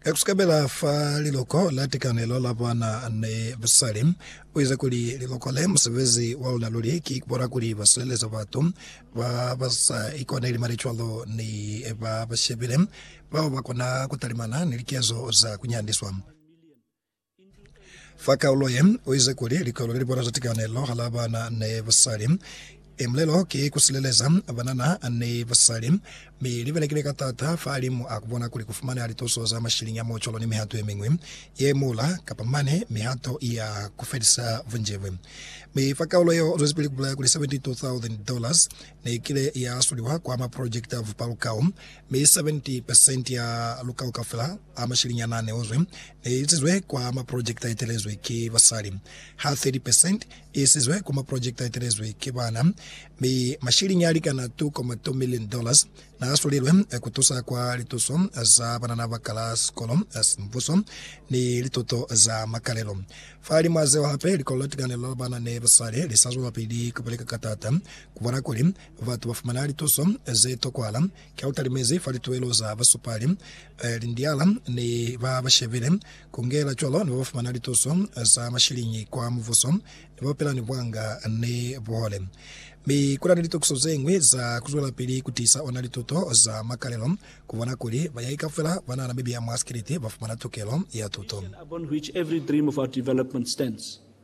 Ka kusukabela fa liloko la tikanelo la bana ni basali, u ize kuli, Liloko le, musebezi wa luna luli ki kubona kuli ba sileleza batu ba ba sa ikoneli mane cwalo ni ba ba shebile bao ba kona ku talimana ni likezo za ku nyandiswa. Fa kaulo ye, u ize kuli likolo le libona za tikanelo hala bana ni basali, e mulelo ki ku sileleza banana ni basali, mi li belekile ka taata fahalimu a ku bona kuli ku fumaneha lituso za mashiliñi a muocolo ni mihato ye miñwi ye muula, kapa mane mihato ya ku felisa bunjebwe. Mi fa kaulo yeo, u zwezipili ku bulaya kuli $72,000 ne kile ya suliwa kwa maprojekiti a vupalukau, mi 70 percent ya lukau kaufela a mashiliñi a na ne uzwi Ne isizwe kwa maprojekiti a etelezwe ki basali, ha 30 percent i isizwe kwa maprojekiti a etelezwe ki bana, mi mashiliñi a likana 2.2 million dollars n'a asulilwe ku tusa kwa lituso za banana ba kala sikolo sa mbuso ni lituto za makalelo. Fahalimw'a zeo hape, likolo la tikanelo la bana ni basali li sa zwelapili ku beleka ka t'ata ku bona kuli batu ba fumana lituso ze tokwahala Ka u talimezi fa lituelo za basupali, lindiala ni ba ba shebile ku ngela cwalo ni ba ba fumana lituso za mashiliñi kwa mubuso ni ba ba pela ni buanga ni buhole. Mi ku na ni litokiso ze ñwi za ku zwelapili ku tiisa ona lituto za makalelo, ku bona kuli bayai kaufela ba nana mibi ya mwa sikiliti ba fumana tukelo ya tuto.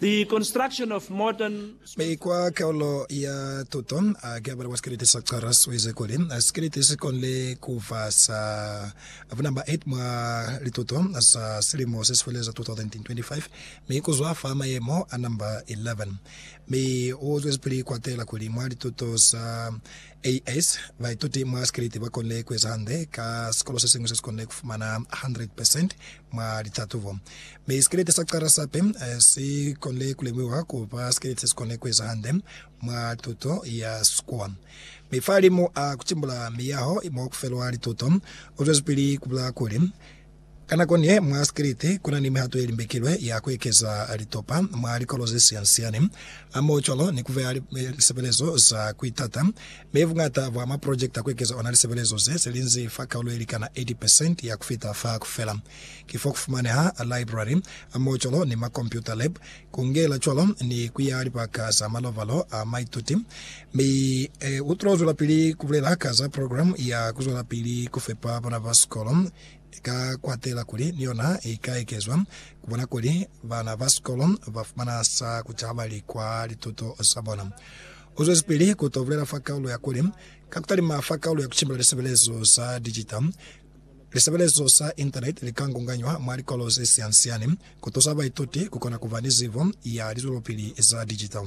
The Construction of Modern Mi kwa kaulo ya tuto, a ki a bala kwa sikeleti sa Charles, u ize kuli, Sikeleti si konile ku ba sa bunumber 8 mwa lituto za silimo se si feleza 2025, mi ku zwa fa mayemo a number 11. Mi u zwezipili ku atela kuli mwa lituto za AS, baituti mwa sikeleti ba konile ku eza hande ka sikolo se siñwi se si konile ku fumana 100 percent mwa litatubo, mi sikelete sa cala sa pe si konile ku lemuhiwa ku ba sikelete si kone ku eza hande mwa tuto ya sikuwa. Mi fahalimu a ku timbula miyaho mo ku felwa lituto, u zwezipili ku bula kuli, Ka nako ni ye mwa sikelete, ku na ni mihato ye limbekilwe ya ku ekeza litopa mwa likolo ze siani-siani, hamoho cwalo ni ku beha lisebelezo za ku itata Mi buñata bwa maprojekiti a ku ekeza ona lisebelezo ze se linzi fa kaulo ye likana 80 percent ya ku fita fa ku fela. Ki fo ku fumaneha library, amocolo, ni makompyuta lab, ku ngela cwalo ni ku ya libaka za malovalo a maituti. Mi e utlo zwelapili ku bulela ka za programe ya ku zwelapili ku fepa bana ba sikolo, ka ku atela kuli ni yona i ka ekezwa, ku bona kuli bana ba sikolo ba fumana sa ku ca bali kwa lituto za bona. Ku zwezipili ku to bulela fa kaulo ya kuli, Ka ku talima fa kaulo ya ku cimbila lisebelezo sa dijita, lisebelezo sa Intaneti li ka ngunganywa mwa likolo ze siani-siani ku tusa baituti ku kona ku ba ni zibo ya lizwelopili za dijita.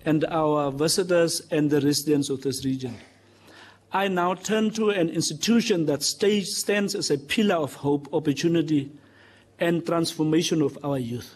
and our ambassadors and the residents of this region. I now turn to an institution that stands as a pillar of hope, opportunity and transformation of our youth.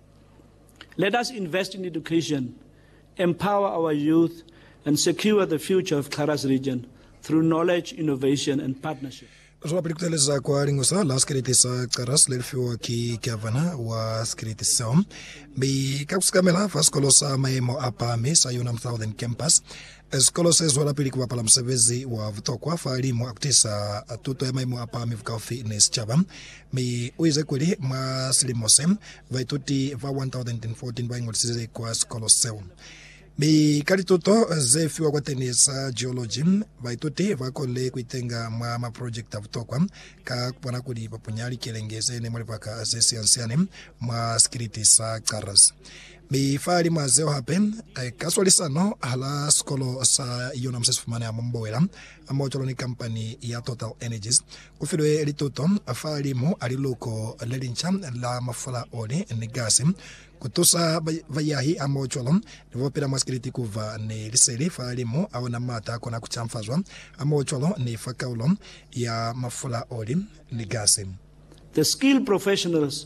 Let us invest in education, empower our youth and secure the future of Xarras region through knowledge, innovation and partnership. Ku zwelapili ku teeleza kwa lingu sa la sikiliti sa Xarras le li fiwa ki Gavana wa sikiliti seo, mi ka ku sikamela fa sikolo sa maemo a pahami sa Unam Southern Campus, Sikolo se zwelapili ku bapala musebezi wa butokwa fa limu a ku tiisa tuto ya maimo a pahami bukaufi ni sicaba, mi u ize kuli, Mwa silimo se, baituti ba 1,014 ba ingolisize kwa sikolo seo, mi ka lituto ze fiwa kwateni za geology, baituti ba konile ku itenga mwa maprojekiti a butokwa ka ku bona kuli ba punya likelenge ze ne mwa libaka ze siansiane mwa sikiliti sa Caraz. Mi fa limo a zeo hape, ka swalisano hala sikolo sa Yonam se si fumaneha mo Mbowela, mo cwalo ni kampani ya Total Energies, ku filwe lituto fa limo a liluko le linca la mafula, oli, ni gasi, ku tusa bayahi hamo cwalo ni bo pila mwa sikiliti ku ba ni liseli fa limo a ona mata a kona ku canfazwa, hamo cwalo ni fa kaulo ya mafula, oli, ni gasi. The Skilled Professionals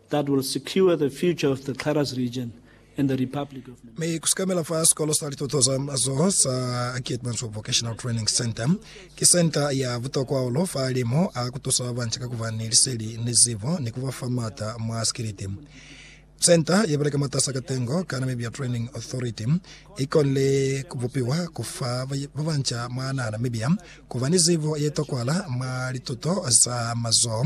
that will secure the future of the Xarras region and the Republic of Namibia. Mi kusikamela fa sikolo sa lituto za mazoho sa Keetmanshoop Vocational Training Centre, ki senta ya butokwa hahulu fa limo a kutusa babanca ka kuba ni liseli ni zibo ni kuba fa maata mwa sikiliti. Senta yebeleka mwatasa katengo ka Namibia Training Authority ikonile kubupiwa kufa babanca mwa naha Namibia kuba ni zibo yetokwahala mwa lituto za mazoho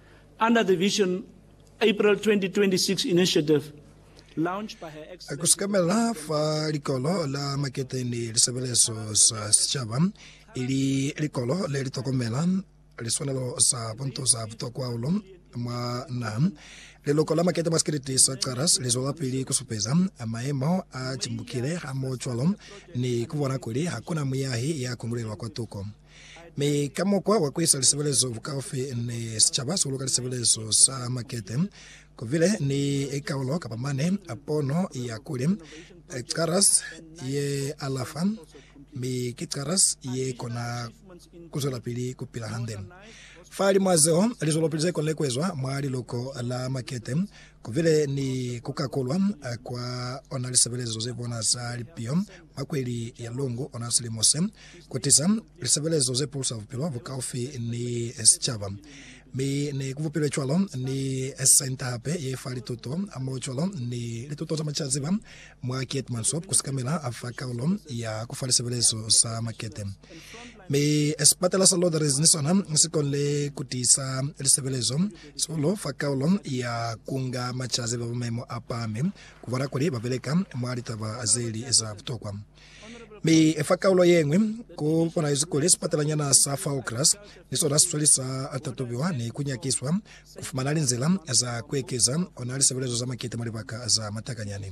Under the Vision April 2026 Initiative, launched by Her Excellency Ku sekamela fa Likolo la Makete ni Lisebelezo za Sicaba, ili likolo le li tokomela liswanelo za buntu za butokwa hahulu mwa naha, liloko la makete mwa sikiliti sa Caras li zwelapili ku supeza mayemo a timbukile hamohocwalo ni ku bona kuli ha ku na muyahi ya kundulelwa kwatuko. Mi ka mukwa wa kuisa lisebelezo bukaufi ni sicaba sihulu ka lisebelezo sa makete, kubile ni kaulo kapa mane a pono ya kuli, Caras ye alafa, mi ki caras ye kona kuzwelapili kupila hande. Fa limo a zeo, lizwelopili ze konile kuezwa mwa liluko la makete Ku bile ni ku kakulwa kwa ona lisebelezo ze bona za lipiho mwa kweli ya Lungu ona silimo se, ku tiza lisebelezo ze pulusa bupilo bukaufi ni sicaba. Mi ne ku bupilwe cwalo ni senta hape ye fa lituto hamoho cwalo ni lituto za macaziba mwa Keetmanshoop ku sikamela fa kaulo ya ku fa lisebelezo za makete. Mi sipatela sa Lodres ni sona si konile ku tiisa lisebelezo Sulo fa kaulo ya kunga macazi ba maimo a pahami ku bona kuli ba beleka mwa litaba ze li za butokwa. Mi fa kaulo ye ñwi, ku bonahezi kuli sipatalanyana sa fa Okras ni sona si sweli sa tatubiwa ni ku nyakiswa ku fumana linzila za ku ekeza ona lisebelezo za makete mwa libaka za matakanyani.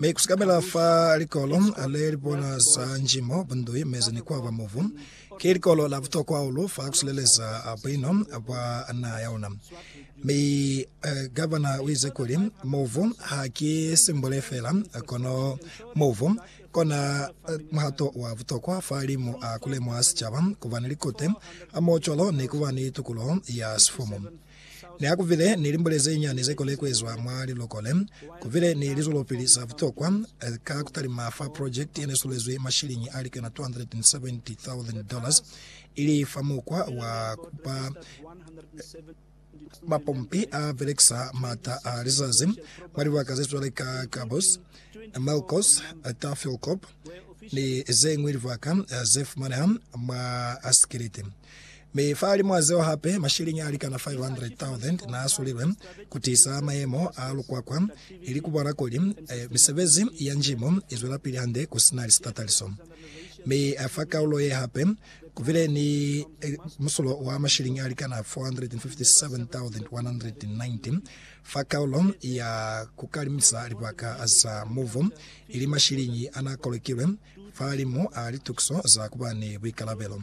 Mi kusikamela fa likolo le lipona za njimo, bundui, mezi ni kuaba mubu, ki likolo la butokwa hahulu fa kusileleza buino bwa naha yaluna. Mi Gavana uize kuli, Mubu ha ki simbole feela, kono mubu kona muhato wa butokwa fa limu a kulemuha sicaba, kuba ni likute, hamoho cwalo ni kuba ni tukuloho ya sifumu. Ne ku bile ni limbule ze nyani ze kole ku ezwa mwa liloko le. Ku bile ni lizwelopili za butokwa ka ku talima fa project ye ne sulezwi mashilingi a likena 270,000 dollars, ili fa mukwa wa ku ba mapompi a belekisa mata a lizazi mwa libaka ze cwale ka Cabos, Melcos, Tafilkop ni ze ñwi libaka ze fumaneha mwa Askiliti. Mi fahalimw'a zeo hape, mashiliñi alikana 500,000 naasulilwe kutiisa mayemo a lukwakwa ili kubona kuli misebezi ya njimu izwelapili hande kusina lisitataliso. Mi fa kaulo ye hape, kubile ni musulo wa mashiliñi alikana 457,190 fa kaulo ya kukalimisa libaka za muvu, ili mashiliñi anaakolokilwe fahalimu a litukiso za kuba ni buikalabelo.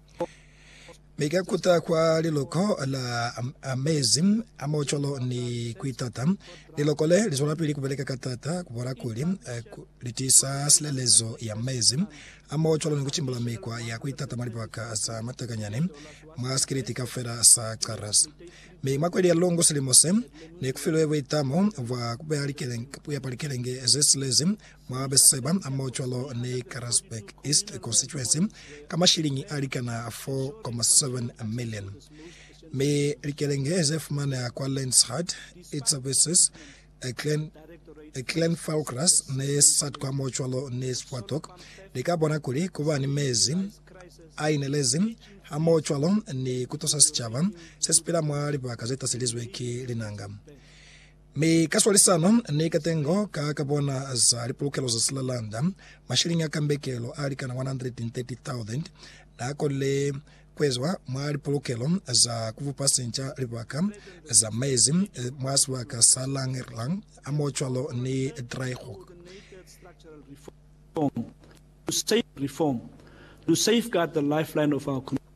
Mi ka kuta kwa liloko la mezi a mocolo ni kuitata, liloko le li zwelapili kubeleka ka taata kubona kuli li tiisa silelezo ya mezi a mocolo ni kucimbula mikwa ya kuitata mwa libaka za matakanyani mwa sikiliti kaufela sa Chartres. Mi mwa kweli ya lungu silimo se, ne kufilwe buitamo bwa kupepa likelenge zesilezi Mwa Beseba, mo cwalo ni Karasburg East konsituensi, ka mashiliñi a likana 4.7 milioni. Mi likelenge ze fumaneha kwa Lenzerheide, Itzebeses, Glen, Glenfarclas ni Satqua mo cwalo ni Swartok li ka bona kuli ku ba ni mezi a inelezi hamoho cwalo ni ku tusa sicaba se si pila mwa libaka ze taselizwe ki linanga. Mi ka swalisano ni katengo ka ka bona za lipulukelo za silalanda, mashilingi a kambekelo a likana 130,000 na konile kuezwa mwa lipulukelo za kubupa sinca libaka za mezi mwa sibaka sa Langerlang, hamocwalo ni Draaihoek.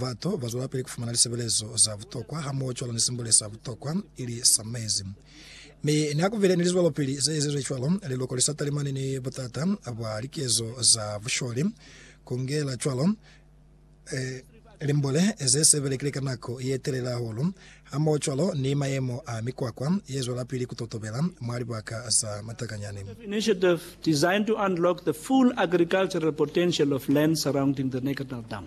Batu bazwelapili kufumana lisebelezo za butokwa hamoho cwalo ni simbule sa butokwa, ili sa mezi. Mi niakubile ni lizwelopili zeezizwe cwalo, liloko li sa talimani ni butata bwa likezo za busholi, kungela cwalo limbole ze se belekile ka nako ye telele hahulu, hamoho cwalo ni mayemo a mikwakwa ye zwelapili kutotobela mwa libaka za matakanyani. Initiative, Initiative designed to unlock the full agricultural potential of land surrounding the Neckartal Dam.